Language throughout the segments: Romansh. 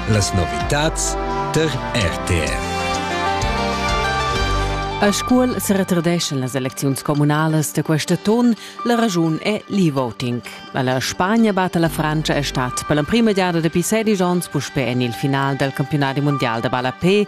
Las novitads tar RTR. A Scuol se retardeschan las elecziuns comunalas da questa ton. La ragiun è l'e-voting. La Spagna batta la Francia è stat per l'emprima giada dapi 16 onns puspè en il final dal campionat mondial da ballapé.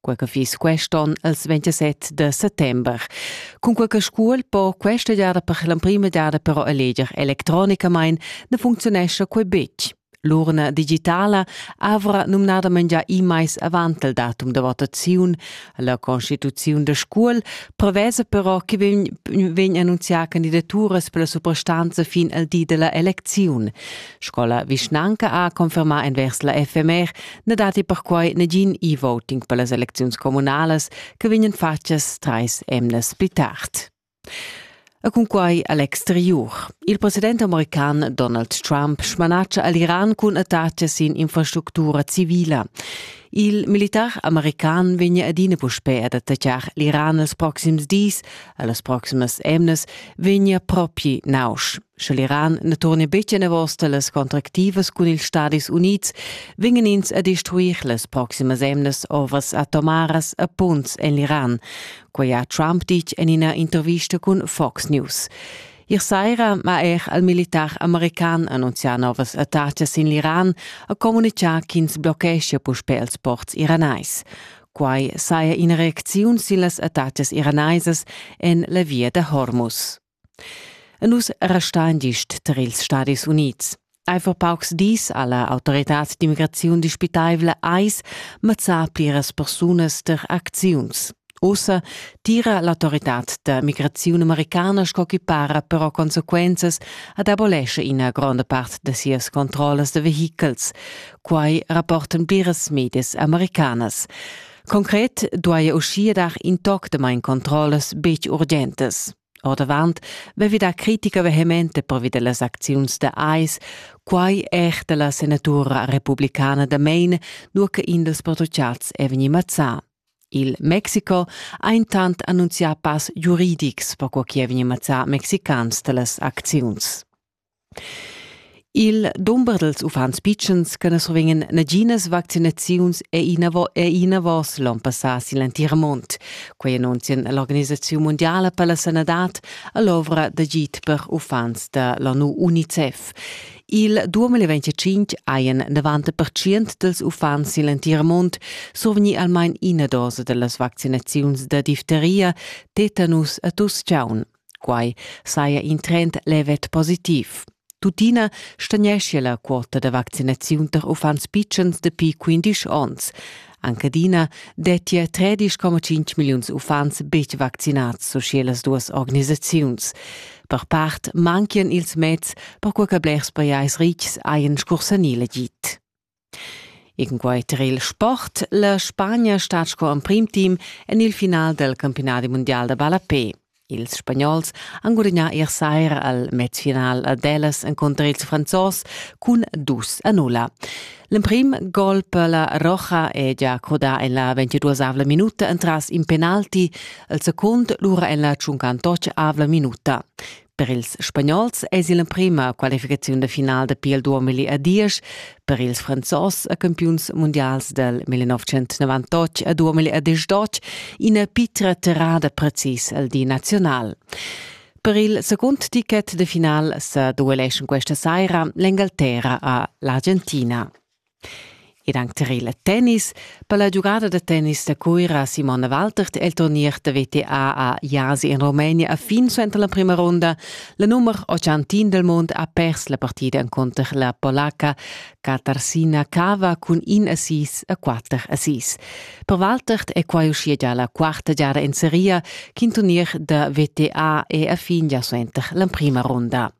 quei che fiss quest'on els 27 de settember. Cun quei che scuol po questa giada per l'emprima giada però eleger electronicamain ne funzionescha quei betg. L'urna digitala avra numnadament già immais avant il datum de votaziun. La constituziun de Scuol prevesa però che vegn, vegn annunzià candidaturas per la suprastanza fin al di della eleziun. Scola Vischnanca ha confermà envers la FMR na datti perquai nagin e-voting per las elecziuns communalas che vegnan fatgas trais emnas pli tard. E cunquai a l'exteriur. Il president american Donald Trump smanatscha a l'Iran cun attacks sin infrastructura civila. Il militar american vegna adina puspè ad attaccar l'Iran els proxims dis, a las proximas emnas vegna propi nausch. Sche l'Iran ne turne betg enavos las contractivas cun ils Stadis Unids, vingen ins a destruir las proximas emnas ovas atomaras a punts en l'Iran. Quei ha Trump ditg en ina intervista cun Fox News. Ier saira ma er al militar american annunzià novas attacas in l'Iran a comunicà ch'ins blocheschia puspè els ports iranais. Quai saja ina reacziun sin las attacas iranaisas en la via da Hormuz. E nus restain gist tar ils Stadis Unids. Eifer paucs dis ha la autoritad d'immigraziun dispitaivla ais mazzà pliras persunas tar acziuns. Ussa tira l'autoritad da migraziun americana sco chi para però consequenzas ad abolesce ina gronda part da sias controllas da vehichels. Quai rapportan pliras medias americanas. Concret duaja uschia dar in toc de main controllas betg urgentas. Ordavant vevi da critica vehemente pervi dellas acziuns da AIS, quai er della senatura republicana da Maine, nur che in dels patruciats è veni mazzà. Il Mexico ha intant annunzià pass giuridics per co chi è veni mazzà mexicans dellas acziuns. Il dumber dals uffants pitschens che na survegnan naginas vaccinaziuns è inavos, è inavos l'onn passà sin l'entir mund. Quai annunzian l'Organisaziun mundiala per la sanadad a l'ovra d'agid per uffants da l'ONU UNICEF. Il 2025 hajan 90% dals uffants sin l'entir mund survegni almain ina dosa da las vaccinaziuns da difteria, tetanus e tuss-chaun. Quai saja in trend levet positiv. Tuttina stagneschia la quota da vaccinaziun tar uffants pitschens dapi 15 onns. Anche adina dettia 13,5 milliuns uffants betg vaccinads, so sche las duas organisaziuns. Per part manchian ils meds, perquai che blers pajais rics hajan scursanì l'agid. E cunquai tar il sport la Spagna stat sco emprim team en il final dal campionadi mundial da ballapè. Ils Spagnols han gudagnà ier saira al matchfinal a Dallas encunter ils Franzos cun dus a nulla. L'emprim gol per la Roja è gia crudà en la 22avla minuta entras in penalti, il secund lura en la tschuncantoc avla minuta. Per ils spagnols es il emprima qualificaziun da final dapi il 2010, per ils franzos e campiuns mundials del 1998 e 2018 ina pitra terrada precis al di nazional. Per il secund ticket de final sa dueleschan questa saira l'Engalterra a l'Argentina. Ed anche tir il tennis. Per la giugada da tennis da Cuira Simone Waltert è il turnier da WTA a Jasi in Rumenia a fin suenter la prima ronda. La nummer 80 del mond ha pers la partida encunter la polacca Katarsina Kava cun in assist a quatter assists. Per Waltert è quai uschia già la quarta giada in seria ch'in turnier da WTA è a fin già suenter la prima ronda.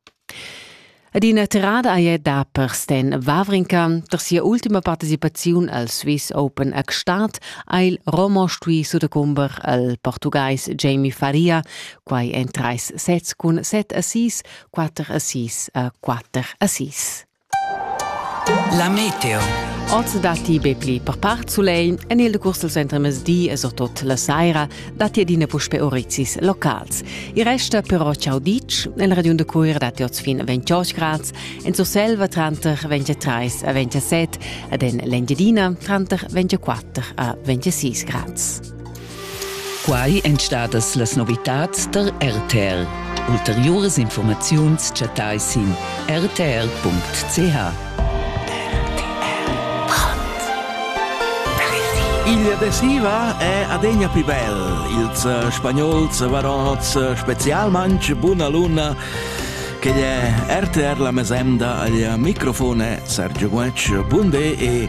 Ed ina tirada ei da per Sten Wawrinka per sia ultima participaziun al Swiss Open a Gstaad ha il Romo stui sutacumber al portugues Jamie Faria, quai en treis sets cun set assís, quatter assís e quatter assís. La meteo. Oz datti be pli per part sulegl. En il decurs dal centremezdi e surtut la saira datti adina puspè orrizis locals. Il resta però ciao ditg. En regiun da Cuira datti oz fin 28 grads. En Surselva tranter 23 e 27 ed en l'Engiadina tranter 24 a 26 grads. Quai èn stadas las novitads tar RTR. Ulteriuras informaziuns chattai sin rtr.ch. Il adesiva è adegna pli bel. Ils eh, spagnols varots eh, specialmanc buna luna che è RTR la mesenda al microfone Sergio Guac. Bun e